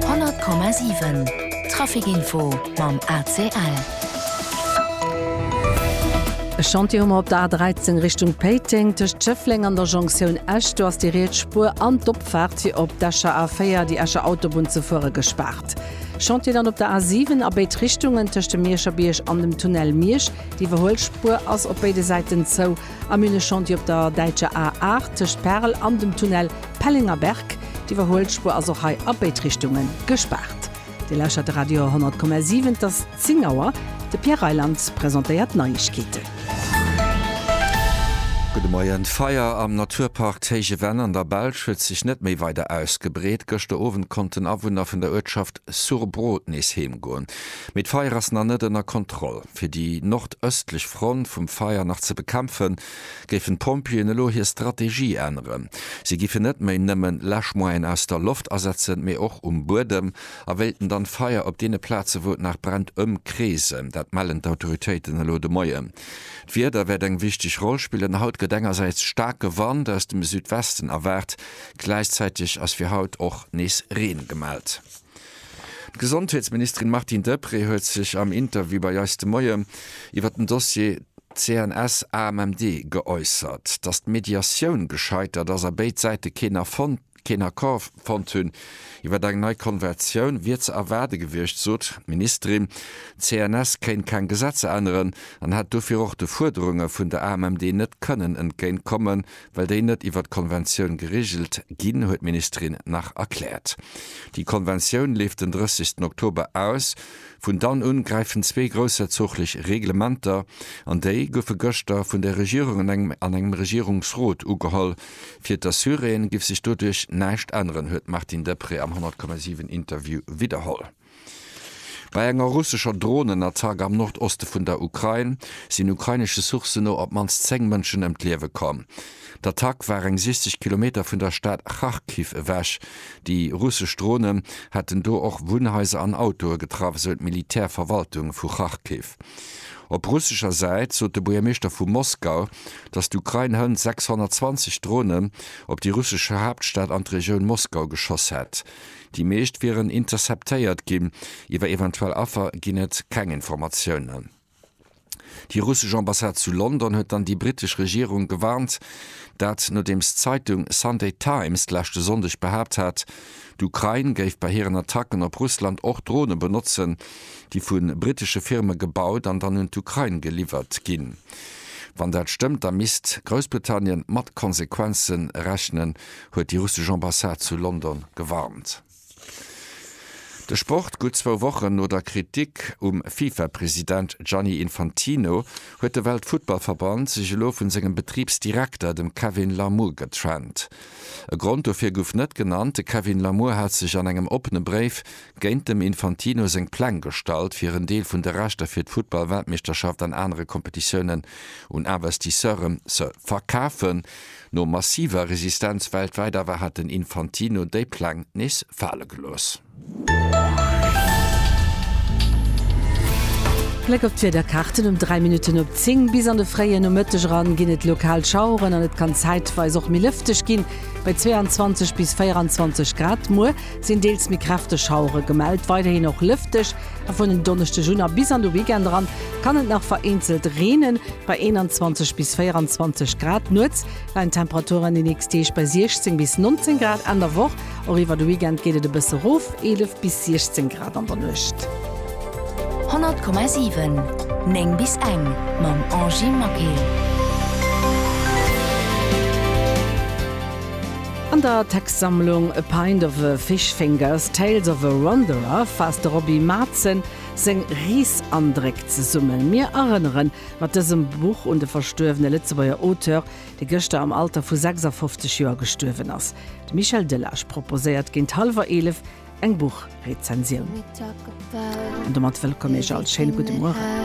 100,7 Trafikinfo mam ACL. E Chantier hu mer op der A 13 Richtung Péiteng. Tëscht Schëffleng an der Jonktioun Esch, do ass déi riets Spuer an d'Opfaart fir op d'Escher A4, déi Escher Autobunn, ze fuere gespaart. Chantier dann op der A 7 a béid Richtungen, tëscht dem Mierscher Bierg an dem Tunnel Miersch. Déi iwwerhuel Spuer ass op béide Säiten zou. Am Mülleshantier op der däitscher A 8 tëscht Perl an dem Tunnel Pellenger Berg. D'Iwwerhuelspuer ass och hei a béid Richtunge gespaart. Dir lauschert de Radio 100,7. Et ass 10 Auer. De Pierre Reyland presentéiert d'Neiegkeeten. Gudde Moien. D'Feier am Naturpark Téije Venn an der Belsch huet sech net méi weider ausgebreet. Gëschter Owend konnten Awunner vun der Uertschaft Surbrot nees heem goen. Mee d'Feier ass nach net ënner Kontroll. Fir déi nordëstlech Front vum Feier nach ze bekämpfen, géifen d'Pompjeeën elo hir Strategie änneren. Si géifen net méi nëmmen Läschmoyene aus der Loft asetzen, mee och um Buedem a wéilten dann d'Feier op deene Plaze wou et nach brennt ëmkreesen. Dat mellen d'Autoritéiten elo de Moien. D'Wieder wäert eng wichteg Roll spillen. Haut gëtt engersäits staarke Wand aus dem Südwesten erwaart, gläichzäiteg ass fir haut och nees Reen gemellt. D'Gesondheetsministerin Martine Deprez huet sech am Interview bei eis de Moie iwwer den Dossier CNS-AMMD geäussert. Datt d'Mediatioun gescheitert ass a béid Säite keen Accord fonnt hunn iwwer eng nei Konventioun, wier ze erwaarde gewiescht, sot d'Ministerin. D'CNS kéint keng Gesetzer änneren an hätt dofir och de Fuerderunge vun der AMMD net kënnen entgéint kommen, Well déi net iwwert d'Konventioun geregelt ginn, huet d'Ministerin nach erkläert. Déi Konventioun leeft den 30 Oktober aus. Vun dann un gräifen zwee groussherzoglich Reglementer an déi goufe gëschter vun der Regierung an engem an engem Regierungsrot ugeholl. Fir d'Assuréen giff sech doduerch näischt änneren, huet d'Martine Deprez am 100,7 Interview widderholl. Bei enger russescher Dronenattack am Nordoste vun der Ukrain sinn ukrainesche Sourcen no op d'mannst 10 Mënschen ëm d'Liewe komm. D'Attack war eng 60 Kilometer vun der Stad Charkiw ewech. Déi russesch Dronen hätten do och Wunnhaiser an Autoe getraff, esou d'Militärverwaltung vu Charkiw. Op russescher Säit sot de Buergermeeschter vu Moskau, datt d'Ukrain hënt 620 Dronen op déi russesch Haaptstad an d'Regioun Moskau geschoss hätt. Déi meescht wieren interceptéiert ginn. Iwwer eventuell Affer ginn et keng Informatiounen. Déi russesch Ambassade zu London huet dann déi brittesch Regierung gewarnt. Dat nodeems d'Zeitung Sunday Times d'leschte Sonndeg behaapt hat, d'Ukrain géif bei hiren Attacken op Russland och Drone benotzen, déi vu brittesche Firme gebaut an dann un d'Ukrain geliwwert ginn. Wann dat stëmmt, da misst Groussbritannien mat Konsequenze rechnen, huet déi russesch Ambassade zu London gewarnt. De Sport, Gutt zwou Wochen no der Kritik um FIFA-President Gianni Infantino huet de Weltfuttballverband sech elo vu sengem Betribsdirekter, dem Kevin Larmour, getrennt. E Grond dofir gouf net genannt. De Kevin Larmour hat sech an engem oppene Bréif géint dem Infantino seng Pläng gestallt, fir en Deel vun de Rechter fir d'Futtball-Weltmeeschterschaft an anere Kompetitiounen un Investisseure ze verkafen. No massiver Resistenz weltwäit awer hat den Infantino déi Pläng nees fale gelooss. Bléck op d'Wiederkaarten, Um 3 Minutten op 10 bis an de fréie Nomëtteg eran ginn et lokal Schaueren an et kann zäitweis och méi lëfteg ginn, bei 22 bis 24 Grad. Muer sinn deels méi kräfteg Schauere gemellt, weiderhin och lëfteg a vun en Donneschdeg un a bis an de Weekend eran kann et nach vereenzelt reenen, bei 21 bis 24 Grad. Nuets leien d'Temperaturen déi nächst Deeg bei 16 bis 19 Grad, Enn der Woch och iwwer de Weekend geet et e bësse rof, 11 bis 16 Grad an der Nuecht. 100,7 9 bis eng mam Angie Maquet. An der Textsammlung A Pint of a Fish Fingers, Tales of a Wanderer faasst de Roby Mazen seng Reesandréck zesummen. Mir erënneren mat dësem Buch un de verstuerwene Lëtzebuerger Auteur, dee gëschter am Alter vu 56 Joer gestuerwen ass. De Michel Delage proposéiert géint hallwer 11 eng Buchrezensioun. An domat wëllkomm Iech all, schéine gudde Mueren.